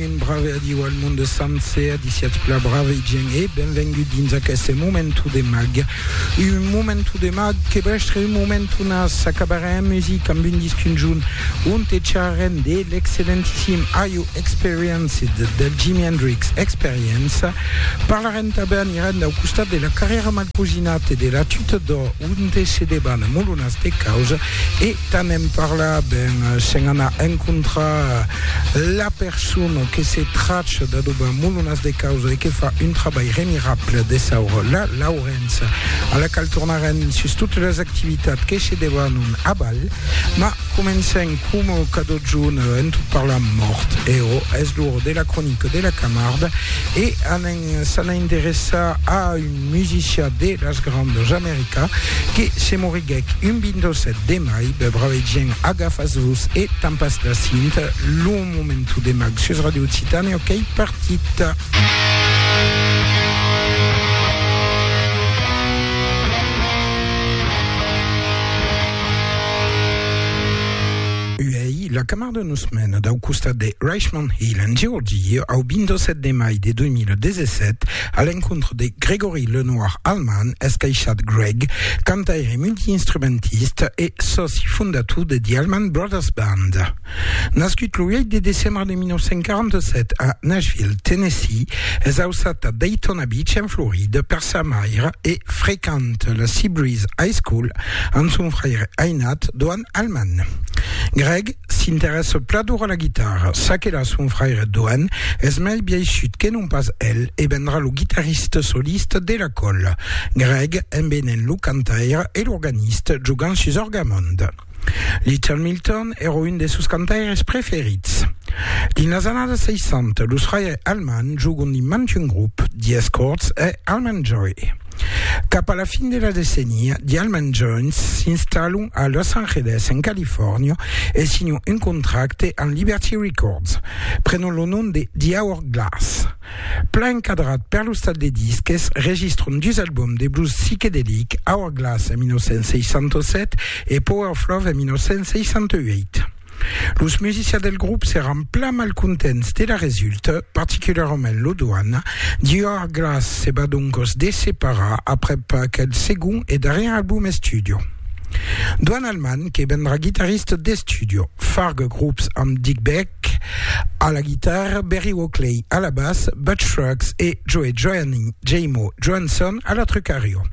Benjamin, brave adiu al monde sencer, a disiatz pla brave gent e benvengut dins aqueste momentu de mag. Un momentu de mag que bèstre un momentu nas, acabarem en music amb un disc conjunt onte charrarem de l'excellentissim Are You Experienced? del Jimi Hendrix Experience. Parlarem tanben, anirem dau costat de la carrièra mal cosinat e de la tuta d'or onte se deban molonas de caus e Tant en parlar ben sen anar encontrar la persona que se tracha d'adobar molonas de causa e que fa un trabalh remirable de saura la Laurença, a la qual tornarem sus totes las activitats que se debanon a Val. Mas comencem coma cada jorn en tot parlar mort. Eo, es l'ora de la cronica de la Camarde e s'an a interessar a un. un musician de las Grandas America que se moriguèc un 27 de mai, be bravèit gent agafas vos e tampas la cint, lo momento de mag sus Radio Occitània ok qu'ei partit. Uèi la camarda nos mena dau costat de Richmond Hill en Georgia au 27 de mai de 2017, A l'encontre de Gregory Lenoir Alman, escaishat Greg, cantaire multiinstrumentista e sòci fondator de The Alman Brothers Band. Nascut lo 8 de decembre de 1947 a Nashville, Tennessee, es ausat a Daytona Beach en Florida per sa maire e frequent la Seabreeze High School amb son fraire ainat Doane Alman. Greg s'interèsse plador a la guitarra, ça que la son fraire Doan es mei biaishut que non pas el e vendrà lo guitarriste soliste de la còla, Greg, embenent lo cantaire e l'organiste jogant sus Orgamond. Little Milton èra un de sos cantaires preferits. Dins las annadas 60, los fraires Allman jogant dins mantun grop, The Escorts e Allman Joy. Cap a la fin de la decenia, The Allman Jones s'installon a Los Angeles, en Califòrnia, e signon un contracte amb Liberty Records, prenon lo nom de The Hourglass. Plan encadrat per lo stat de disques, registron dus albòms de blues psiquedelic, Hourglass en 1967 e Power of Love en 1968. Los musicians del grop seràn plan mal contents de la resulta, particularament lo Doan. Dior Glass se va doncos desseparar aprèp aquel segon e darrièr album estudio. Doan Allman que vendrà guitarrista d'estudio, farga grops amb Dick Beck a la guitarra, Berry Oakley a la bas, Butch Scruggs e Joe Joanny Jaymo Johansson a la trucario.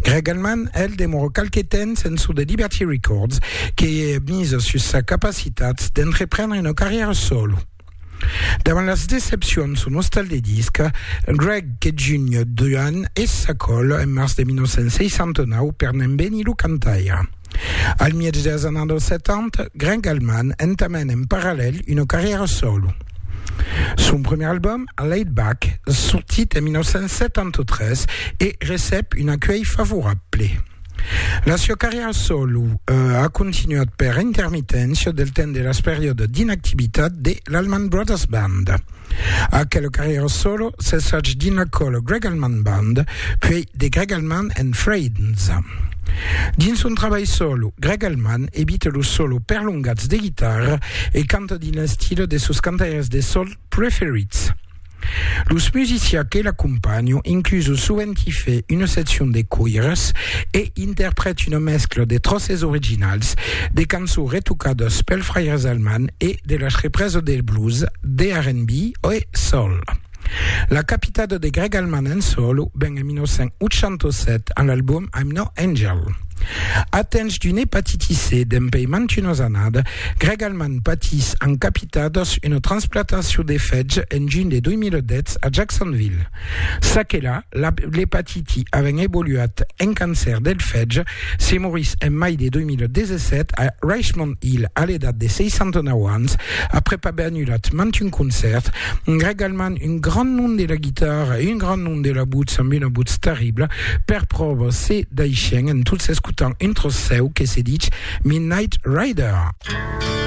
Greg Allman, el, demora qualque temps en çò de Liberty Records, que misa sus sa capacitat d'entreprendre una carrièra solo. Davant las decepcions son ostal de disc, Greg que junh d'un es s'acòl en març de 1969 per n'embenir lo cantaire. Al mièg dels annadas dels 70, Greg Allman entamèn en parallèl una carrièra solo. Son primièr album, A Laid Back, sortit en 1973, e recep un acuelh favorable. La sua carrièra solo a continuat per intermiténcia del temps de las periòdas d'inactivitat de l'Allman Brothers Band. Aquela carrièra solo cessètz dins la còla Greg Allman Band, puèi The Greg Allman and Friends. Dins son trabalh solo, Greg Allman evita los solos perlongats de guitarra e canta dins l'estil de sos cantaires de sol preferits. Los musicians que l'acompanhan incluson sovent i fe una seccion de coires e interprèt una mescla de tròces originals de cançons retocadas pels fraires Allman e de las reprèses de blues, de R&B e soul. La capitada de Greg Allman en solo ven en 1987 amb l'album I'm No Angel. Atench d'una hepatiti C dempèi mantunas annada, Greg Allman patís amb capitadas una transplatacion de fetge en junh de 2010 a Jacksonville. Çaquelà, l'hepatiti avent evoluat en cancèr del fetge, Se morís en mai de 2017 a Richmond Hill a l'edat de 69 ans, aprèp aver annulat mantun concèrt, regalmant un grand nom de la guitarra e un grand nom de la butz amb una butz terribla, per pròva se daishèn en tot s'escotant un tròç seu que se dich Midnight Rider.